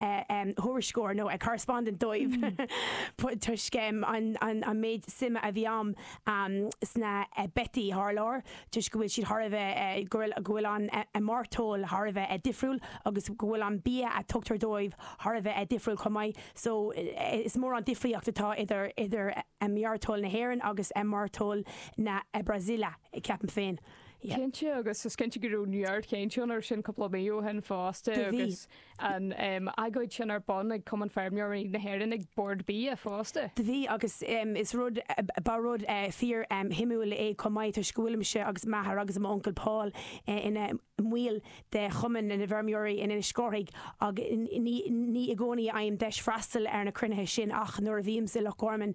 thuairisceoir nó a correspondent dóibh toisc an méid suime a bhí agam sna beithígh thar lear toisc go bhfuil siad thar a bheith, go bhfuil an mairteoil thar a bheith difriúil agus go bhfuil an bia a tugtar dóibh thar a bheith difriúil chomh maith so is mór an difríocht atá idir mairteoil na hÉireann agus mairteoil na Brasaíle ceapaim féin. Cinnte agus is cinnte go raibh neart chainte ann ar sin cúpla mí ó shin fosta agus. Do bhí. an agóid sin ar bun ag Cumann Feirmeoirí na hÉireann, ag Bord Bia fosta. Do bhí agus is rud, ba rud fíor shuimiúil é chomh maith toisc go bhfuilimse agus m'athair agus m'uncail Paul ina mbaill de Chumann na bhFeirmeoirí in Inis Córthaidh agus ní i gcónaí a fhaighim deis freastal ar na cruinnithe sin ach nuair a bhímse i Loch Gorman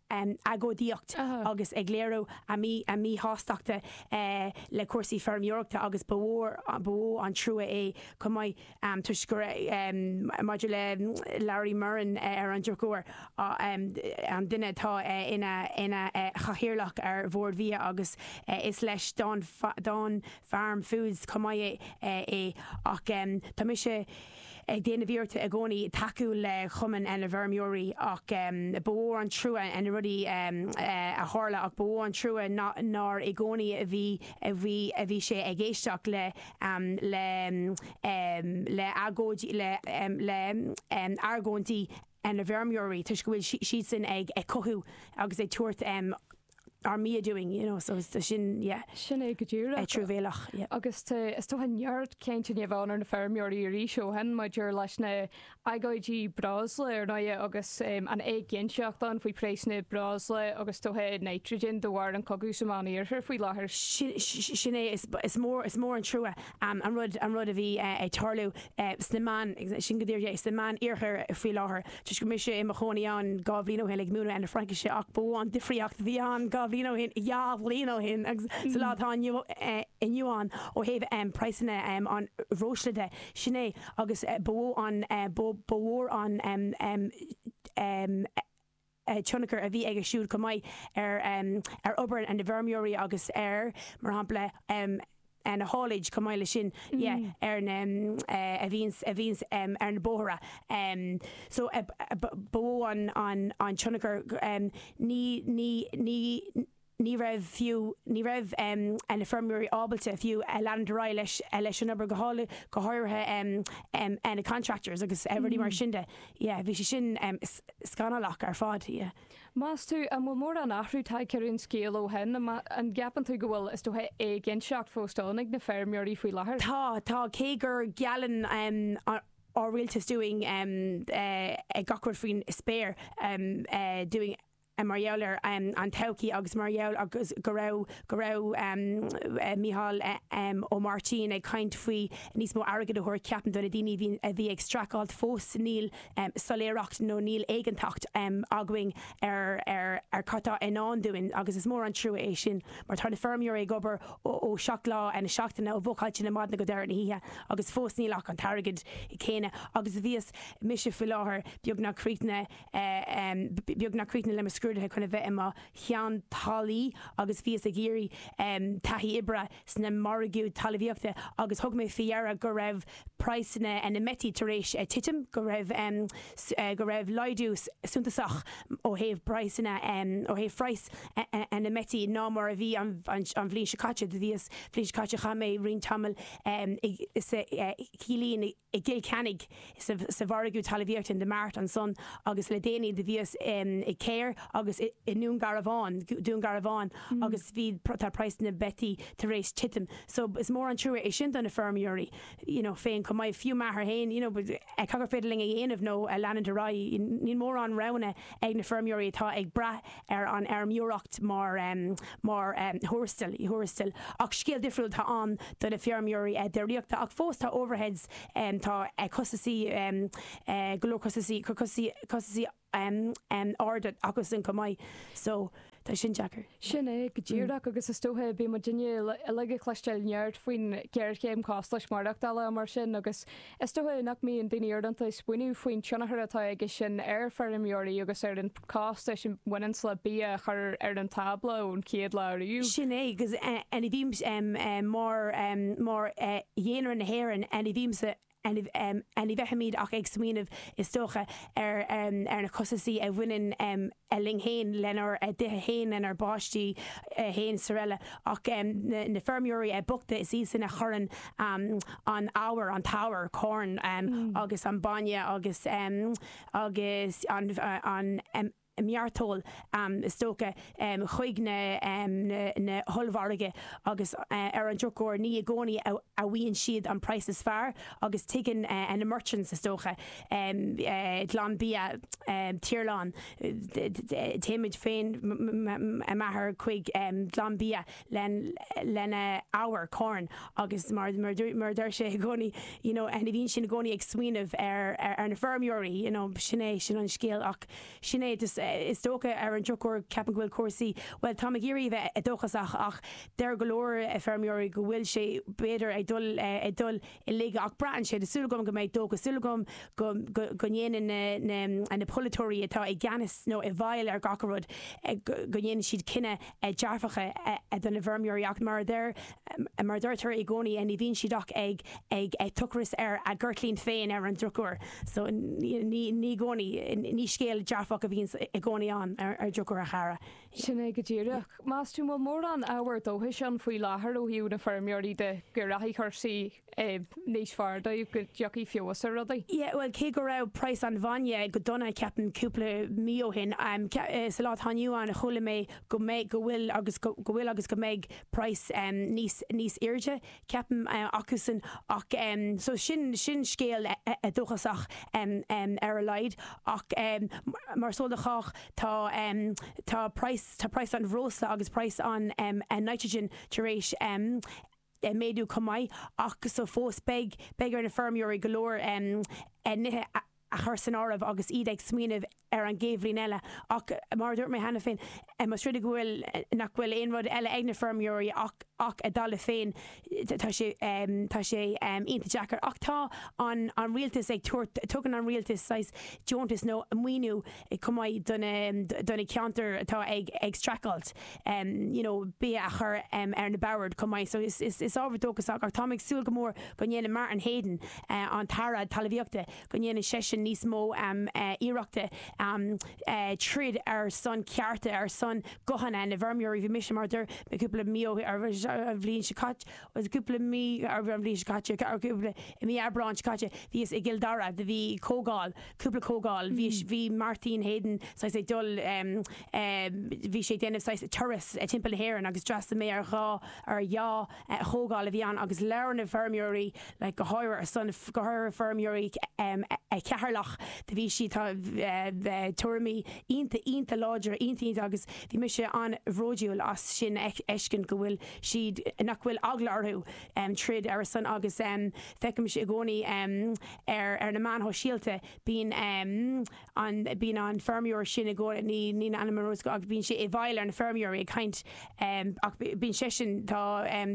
agóidíocht agus ag léiriú a míshástachta le cúrsaí feirmeoireachta agus ba, ba mhó an trua é chomh maith toisc gur maidir le Larry Murrin ar an drochuair an duine atá ina chathaoirleach ar Bhord Bhia agus is leis Dawn Farm Foods chomh maith é ach tá mise ag déanamh iarracht i gcónaí tacú le Chumann na bhFeirmeoirí ach ba mhó an trua na rudaí a tharla ach ba mhó an trua nár i gcónaí a bhí, a bhí, a bhí sé ag éisteacht le, le argóid, le hargóintí na bhfeirmeoirí toisc go bhfuil siadsan ag cothú agus ag tabhairt are me a doing you know so sin yeah. Sin é go díreach. Truamhéalach yeah. Agus tá is dócha neart cainte i ndomhan na feirmeoirí arís ó shin maidir leis na agóidí breosla ar ndóighe agus an éiginnteacht ann faoi phraghsanna breosla agus dóthain nitrigine de bharr an cogaidh sa Mheán-Iarthar faoi láthair. Sin é is mór an trua an rud, an rud a bhí ag tarlú sna Meán, sin go díreach é, sna Meán-Iarthar faoi láthair, toisc go mise i mo chónaí ann dhá bhliain ó shin ag múineadh na Fraincise ach ba mhó an difríocht a bhí ann dhá bhliain ó shin, dhá bhliain ó shin agus sa lá atá inniu, inniu ann ó thaobh praghsanna an bhreosla de, sin é agus ba mhó an, ba mhór an. tionchar a bhí aige siúd chomh maith ar, ar obair na bhfeirmeoirí agus ar, mar shampla, na hauliers, chomh maith leis sin, yeah, ar na, a bhíonns, a bhíonns ar na bóithre. So, ba mhó an, an tionchar, ní, ní, ní, ní raibh fiú, ní raibh em, na feirmeoirí ábalta fiú a leanúint ar aghaidh leis, leis an obair go háirithe, go háirithe em, em na contractors agus eh rudaí mar sin de. Yeah, bhí sé sin em scannalach ar fad, yeah. Meas tú, an bhfuil mórán athrú tagtha ar an scéal ó shin, an, an gceapann tú go bhfuil, is dócha, éiginnteacht fós ann ag na feirmeoirí faoi láthair? Tá, tá, cé gur geallann em ár rialtas dúinn em eh gach rud faoin spéir em eh dúinn eh. mar gheall ar an todhchaí agus mar gheall agus go raibh go raibh Mícheál Ó Máirtín ag caint faoi níos mó airgead a thabhairt ceapaim do na daoine a bhí ag streacáilt fós níl soiléireacht nó níl éiginnteacht againn ar ar ar cad tá i ndán dúinn agus is mór an trua é sin mar tá na feirmeoirí ag obair ó seacht lá na seachtaine ó mhochailtí na maidine go deireadh na hoíche agus fós níl ach an t-airgead céanna agus a bhíos mise faoi láthair beagnach críochnaithe em, beagnach críochnaithe le mo scrúduithe chun a bheith i mo cheantálaí agus bhíos ag iarraidh, em, taithí oibre sna margaí talmhaíochta agus thug mé fé ndeara go raibh praghsanna na mbeithíoch tar éis titim, go raibh, em, go raibh laghdú suntasach ó thaobh praghsanna, em, ó thaobh phraghas na mbeithíoch ná mar a bhí an bhliain seo caite. Do bhíos, bhliain seo caite chaith mé roinnt tamaill, em, i sa, eh, Cillín i. i gCill Chainnigh sa mhargadh talmhaíochta in the mart ansan agus le déanaí do bhíos i Cahir agus i nDún Garbhán, Dún Garbhán agus bhí tá praghsanna beithíoch tar éis titim so is mór an trua é sin do na feirmeoirí you know féin chomh maith, fiú m'athair féin you know eh cad gur féidir linn a dhéanamh nó a leanúint ar aghaidh níl mórán roghanna ag na feirmeoirí atá ag brath ar an fheirmeoireacht mar, mar thuarastal, thuarastal ach scéal difriúil atá ann do na feirmeoirí déiríochta ach fós tá overheads, tá costasaí, go leor costasaí, costasaí, costasaí arda acu san chomh maith so tá sin deacair. Sin é go díreach agus is dócha bíonn muidne uilig ag cloisteáil neart faoin ghéarchéim costais maireachtála mar sin agus Is dócha nach mbíonn daoine uaireanta ag smaoineamh faoin tionchar atá aige sin ar feirmeoirí agus ar an costas a bhaineanns le bia a chur ar an tábla ón chéad lá riamh. Sin é, agus ní bhímse mar dhaonra na hÉireann, ní bhímse, ní bheimid ach ag smaoineamh, is dócha, ar na costasaí a bhaineann le. a linn fhéin lenár dtithe fhéin, lenár bpáistí fhéin is araile ach na feirmeoirí bochta is iad sin a chuireann an arbhar, an t-arbhar, corn agus an bainne agus agus an mairteoil is dócha chuig na na hollmhargaí agus ar an drochuair ní i gcónaí a fhaigheann siad an praghas is fearr agus tuigeann na merchants is dócha. Glanbia Tirlán téimid féin agus m'athair chuig Glanbia lena ábhar corn agus mar mar deir sé i gcónaí you know and bíonn sinn i gcónaí ag smaoineamh ar ar na feirmeoirí you know sin é sin an scéal ach sin é just is dócha ar an drochuair ceapaim go bhfuil cúrsaí bhuel táim ag iarraidh a bheith dóchasach ach deir go leor feirmeoirí go bhfuil sé b'fhéidir ag dul ag dul in olcas ach braitheann sé, tá súil agam go mbeidh, is dócha, súil agam go, go, go ndéanann na, na, na polaiteoirí atá i gceannas nó i bhfeighil ar gach a rud, go, go ndéanann siad cinneadh dearfach do na bhfeirmeoirí ach mar a deir, mar a deirtear i gcónaí ní bhíonn siad ach ag, ag, ag tochras ar a gceirtlín féin ar an drochuair so ní, ní, ní i gcónaí, ní scéal dearfach a bhíonn i gcónaí ann ar, ar drochuair a chara. Sin é go díreach. Meas tú an bhfuil mórán ábhar dóchais ann faoi láthair ó thaobh na feirmeoirí de go rachaidh cúrsaí níos fearr dóibh, go dtiocfaidh feabhas ar rudaí? Yeah, bhuel, cé go raibh praghas an bhainne go dona, ceapaim, cúpla mí ó shin, sa lá atá inniu ann, chuala mé go mbeidh, go bhfuil agus go bhfuil agus go mbeidh praghas níos, níos airde. ceapaim, acusan ach so sin, sin scéal dóchasach ar a laghad ach mar is eol do chách tá, tá praghas, tá praghas an bhreosla agus praghas an nitrogen tar éis méadú chomh maith ach so fós beidh, beidh ar na feirmeoirí go leor nithe a. a chur san áireamh agus iad ag smaoineamh ar an gcéad bhliain eile. Ach mar a dúirt mé cheana féin, más rud é go bhfuil, nach bhfuil aon rud eile ag na feirmeoirí ach a dtalamh féin. Tá sé, tá sé iontach deacair. Ach tá an Rialtas ag tabhairt, tugann an Rialtas saghas deontas nó maoiniú, chomh maith do na ceantair atá ag streachailt you know bia a chur ar na boird chomh maith so is ábhar dóchasach ach táim ag súil go mór go ndéanann Martin Heydon an tAire Talamhaíochta go ndéanann seisean níos mó iarrachta troid ar son cearta ar son guthanna na bhfeirmeoirí bhí mise mar a dúirt mé cúpla mí or an bhliain seo caite Bhuel, cúpla mí, or an bhliain seo caite, or cúpla, i mí Aibreáin seo caite, bhíos i gCill Dara, do bhí comhdháil, cúpla comhdháil, bhíos, bhí Martin Heydon saghas ag dul, ehm, ehm, bhí sé ag déanamh saghas turas timpeall na hÉireann agus d'fhreastal mé ar dhá, ar dhá chomhdháil a bhí ann agus labhair na feirmeoirí, like, go háirithe ar son, go háirithe feirmeoirí, ehm, Cheatharlach, do bhí siad, tá, eh, eh, tuairimí iontach, iontach láidre, iontach, iontach agus bhí mise an-bhróduil as sin a fheiscint go bhfuil, siad nach bhfuil eagla orthu troid ar a son agus feicimse i gcónaí ar na meáin shóisialta bíonn an bíonn an feirmeoir sin i gcónaí ní níl a ainm ar eolas agam ach bíonn sé i bhfeighil ar na feirmeoirí ag caint ach bíonn seisean tá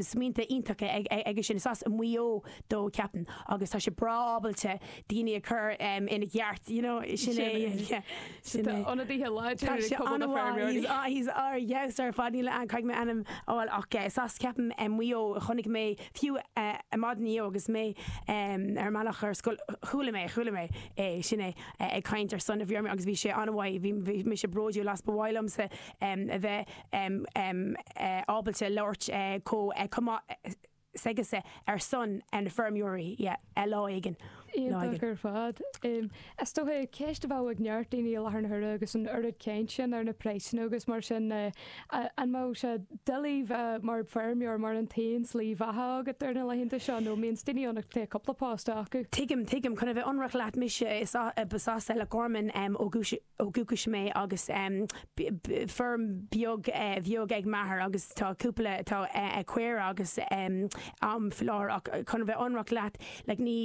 smaointe iontacha aige sin is as Maigh Eo dó ceapaim agus tá sé breá ábalta daoine a chur ina gceart you know sin é yeah. Sin é. Tá ionadaithe láidre ar Chumann na bhFeirmeoirí. Tá sé an-mhaith. He's, ah, he's, ah, yes, ar fad. Ní fhéad mé ainm a fháil ach eh is as ceapaim eh Maigh Eo a chonaic mé fiú eh eh maidin inniu agus mé em ar an mbealach ar scoil chuala mé, chuala mé é, sin é, eh ag caint ar son na bhfeirmeoirí agus bhí sé an-mhaith, bhí bhí mise bródúil as. Ba mhaith liomsa em a bheith em em eh ábalta labhairt eh chomh eh chomh maith eh. s'aigesean ar son na feirmeoirí lá éigin. Iontach ar fad. Is dócha, ceist a bheadh ag neart daoine i láthair na huaire agus an oiread caint sin ar na praghsanna agus mar sin ná, an mbeadh sé doiligh bheith mar feirmeoir mar an t-aon slí bheatha agat ar na laethanta seo nó an mbíonn daoine ann a bhfuil cúpla post acu? Tuigim, tuigim. Chun a bheith ionraic leat, mise is as Loch Garman ó dhúchas. ó dhúchas mé agus feirm bheag bheag ag m'athair agus tá cúpla tá caora agam faoi láthair ach chun a bheith ionraic leat like ní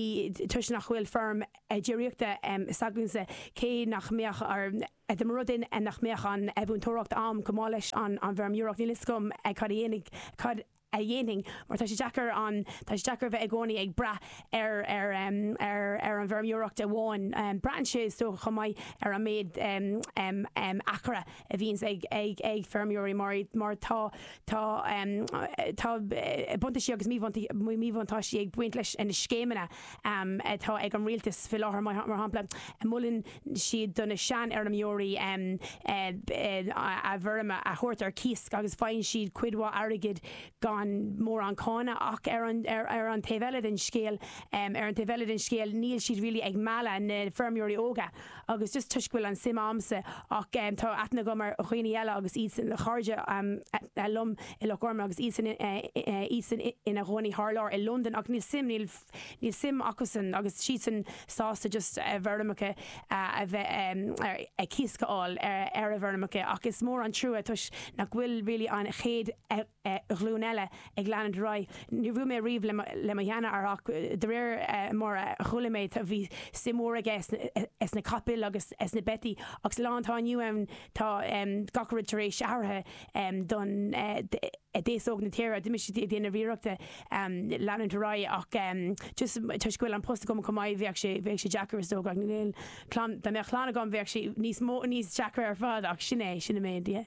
toisc nach bhfuil feirm déiríochta s'agamsa cé nach mbeadh orm dá mba rud é nach mbeadh an mhúinteoireacht a'm chomh maith leis an bhfeirmeoireacht níl fhios agam cad a dhéanfaidh cad a dhéanfainn mar tá sé deacair an, tá sé deacair a bheith i gcónaí ag brath ar, ar, ar, ar an bhfeirmeoireacht amháin. Braitheann sé is dócha chomh maith ar an méid acra a bhíonns ag, ag, ag feirmeoirí mar, mar tá, tá, tá buntáistí agus míbhuntáistí, míbhuntáistí ag baint leis na scéimeanna. atá ag an Rialtas faoi láthair, mar shampla, molann siad do na seanfheirmeoirí a bhfeirm a thabhairt ar cíos agus faigheann siad cuid mhaith airgid gan mórán cánach. Ach ar an taobh eile den scéal, ar an taobh eile den scéal, níl siad really ag mealladh na feirmeoirí óga. agus just toisc go bhfuil an suim a'msa ach tá aithne agam ar dhaoine eile agus iadsan ina gcairde liom i Loch Garman agus iadsan iadsan ina gcónaí thar lear i Londain ach níl suim níl níl suim acusan agus siadsan sásta just a bhfeirmeacha a bheith ar a cíos a fháil ar a bhfeirmeacha ach is mór an trua toisc nach bhfuil really an chéad ghlúin eile ag leanúint ar aghaidh. Níor bhuail mé riamh le mo sheanathair ach de réir mar a chuala mé bhí suim mhór aige sna capaill agus sna beithí ach sa lá atá inniu ann tá gach rud tar éis athraithe do na d'aos óg na tíre, bímse ag déanamh iarrachta leanúint ar aghaidh ach just toisc go bhfuil an post agam chomh maith bheadh sé deacair is dócha. Dá mbeadh clann agam bheadh sé níos deacra ar fad ach sin é, sin an méid.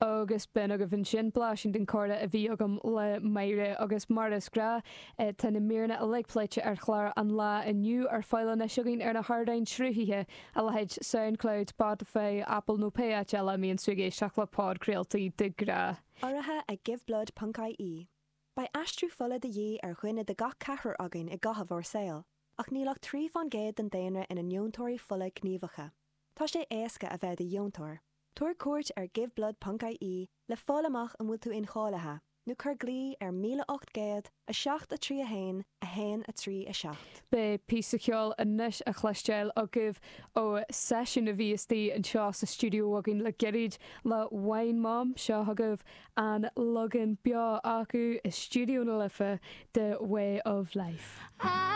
agus b'in agaibh ansin blaisín den comhrá a bhí agam le Máire agus mar is gnáth tá na míreanna uilig pléite ar chlár an lae inniu ar fáil anois againn ar na hardáin sruthaithe a leithéid Soundcloud, Spotify, Apple nó pé áit eile a mbíonn tú ag éisteacht le podchraoltaí de ghnáth. Urraithe ag Giveblood ponc ie Beidh aistriú fola de dhíth ar dhuine de gach ceathrar againn i gcaitheamh ár saol, ach níl ach trí faoin gcéad den daonra ina ndeontóirí fola gníomhacha. Tá sé éasca a bheith i do dheontóir. Tabhair cuairt ar giveblood.ie le fáil amach an bhfuil tú incháilithe, nó cuir glao ar 1800 7 3 1 1 3 7. Beidh píosa ceoil anois á chloisteáil agaibh ó seisiún a bhí istigh anseo sa stiúideo againn le gairid le Wine Mom. Seo chugaibh an leagan beo acu i Stiúideo na Life de 'Way of Life'.